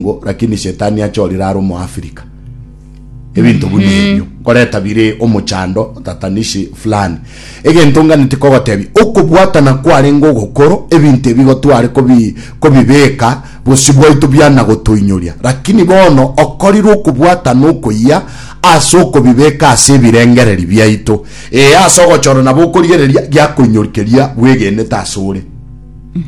Ngo, lakini Shetani achorire are omoafrika ebinto buna ebio nkoreta bire omochando otatanishi fulani egento nganeti kogotebia okobwatana kwarenge ogokoro ebinto ebi gotware kobi kobibeka bosi bwaito biana gotoinyoria lakini bono okorirwe okobwatana okoyia ase okobibeka ase ebirengereri biaito ee ase ogochora nabo okorigereria giakoinyorikiria bwegenete ase ore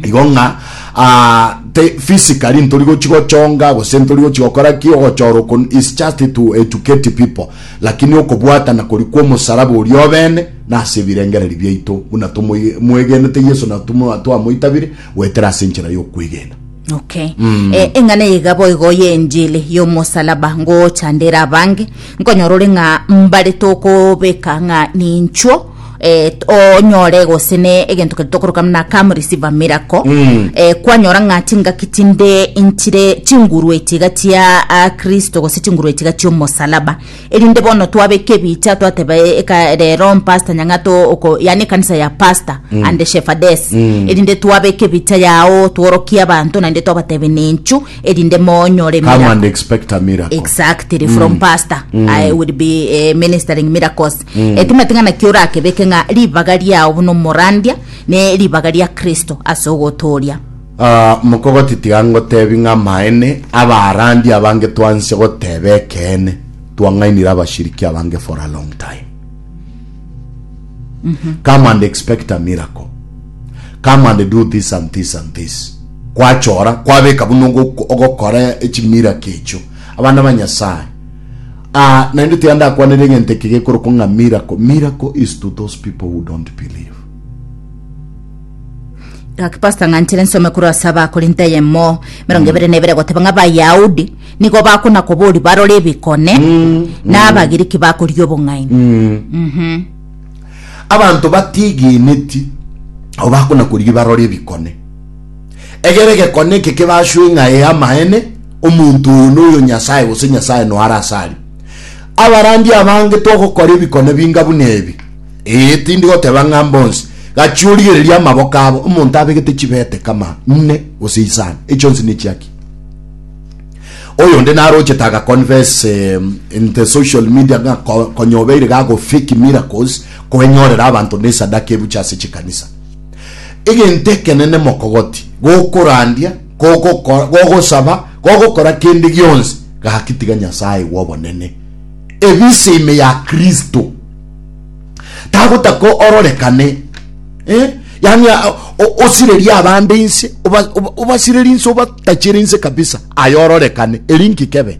igo ng'a ah, te physically ntori gochi gochonga gose ntori gochi gokora ki ogochora oko is just to educate people lakini okobwatana kori kw'omosaraba oria obene na ase ebirengereri biaito buna tomwegenete yeso na tumwa- twamoitabire goetera ase enchera y'okwegena okay Eh, eng'ana eye iga boigo ya enjili yomosalaba ngochandera abange nkonyora ore ng'a mbare tokobeka ng'a ninchuo eh, t- onyore gose ne egento keri tokoroka muna come receive a miracle Mm. eh, kwanyora ng'a chingaki chinde inchire chinguru echiga chia ah, kristo gose chinguru echiga chiomosalaba erinde bono twabeka ebicha twateba eh, eka rero mpasta nyang'ato oko yani ekanisa ya pasta mm. and shefades mm. erinde twabeka ebicha yao tworokie abanto naende twabatebe nenchu erinde monyore come miracle. and expect a miracle exactly from pastor i will be eh, ministering miracles Etimeti ng'a naki orakebeke ng'a ribaga riao buna omorandia ne ribaga ria Kristo ase ogotooria. Ah, mokogoti tiga ngotebi ng'a amaene, abarandia abange twansia goteba ekeene, twang'ainire abashiriki abange for a long time. Come and expect a miracle. Come and do this and this and this. Kwachora, kwabeka buna ogo- ogokora chimiraki echio. Abana ba Nyasaye, Ah, naende tiyandakwanera egento eke gekorokwa ng'a miracle. Miracle is to those people who don't believe. Gaki pastor ng'anchire nsome korwa ase abakorinto eyemo mirongo ebere na ebere goteba ng'a abayahudi nigo bakona kobori barore ebikone na abagiriki bakoria obong'aini Mhm. Abanto batigeneti, abo bakona korigia barore ebikone. Egere egekone eke kebaswe ng'a ee amaene, omonto oyo noyo Nyasae gose Nyasae noare asare. Abarandia abange togokora ebikone binga buna ebi. Ee, tindi goteba ng'a mbonsi. Gachia origererie amaboko abo. Omonto abegete chibete kama inne gose isano, echionsi nechiaki. Oyonde narochete aga confess in the social media ng'a konya obeire gago fake miracles koenyorera abanto nesadaka ebuche ase chikanisa. Egento ekenene mokogoti, gokorandia, gogokora, gogosaba, gogokora kende gionsi, gaki tiga Nyasae bw'obonene. Ebise ime ya Kristo. Tagotaka ororekane. Eh? Yani osirerie abande inse, obasirerie inse, obatachere inse kabisa, ayo ororekane. Eri nkikebe.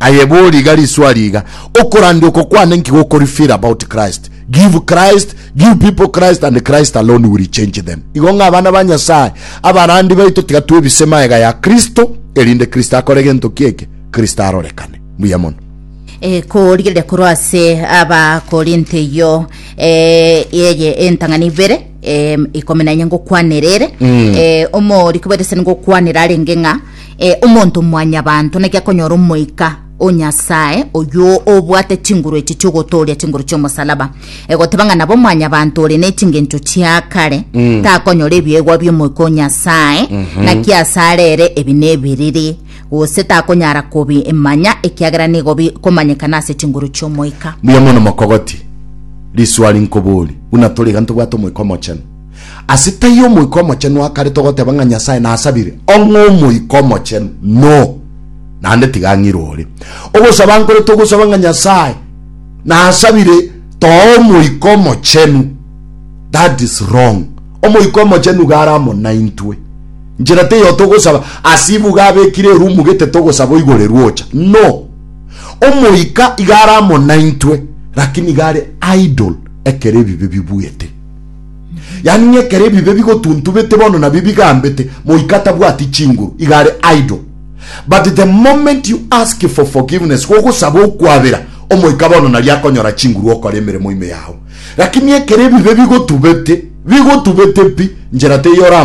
Aye bori iga riswa riga, okorande oko kwane nki gokori feel about Christ? Give Christ, give people Christ and Christ alone will change them. Igo ng'a abana ba Nyasaye, abarandi baito tiga twebise maega ya Kristo, erinde Kristo akore gento kieke, Kristo arorekane. Mbuya mono. Eh, korigereria korwa ase abakorinto eyo eh, eye entang'ani ibere eh, ikomi na enye ngokwanera ere eh, omoriki bwetesani ngokwanera arenge ng'a Ee, omonto mwanyabanto naki akonyora Omoika o Nyasae oyio obwate chinguru echi chi'ogotooria chinguru chi'omosalaba. E, goteba ng'a nabo mwanyabanto ore ne chingencho chia kare, takonyora ebiegwa bi'Omoika o Nyasae, naki asare ere ebi nebiriri, gose takonyara kobi manya ekiagera nigo bi komanyekana ase chinguru chi'Omoika. Mbuya mono mokogoti. Risuari nkobori, buna tori iga ntobwate Omoika Omochenu. Ase taiyo Omoika Omochenu akarete ogoteba ng'a Nyasae nasabire, ong'e Omoika Omochenu, no, naende tiga ang'irwe ore. Ogosaba nkorete ogosaba ng'a Nyasae nasabire toa Omoika Omochenu, that is wrong. Omoika Omochenu iga are amo naintwe. Nchera teiyo togosaba ase ibuga abekire erumu gete togosaba oigorerwe ocha, no. Omoika iga are amo naintwe, lakini iga are idle ekero ebibe bibuete. Yaani ng'a ekero ebibe bigotuntubete bono nabio bigambete, moika atabwati chinguru, iga are idle. But the moment you ask for forgiveness, gogosaba okwabera, omoika bono nario akonyora chinguru okore emeremo ime yao. Lakini ekero ebibe bigotubete, bigotubete pi, njera teiyo oramanye.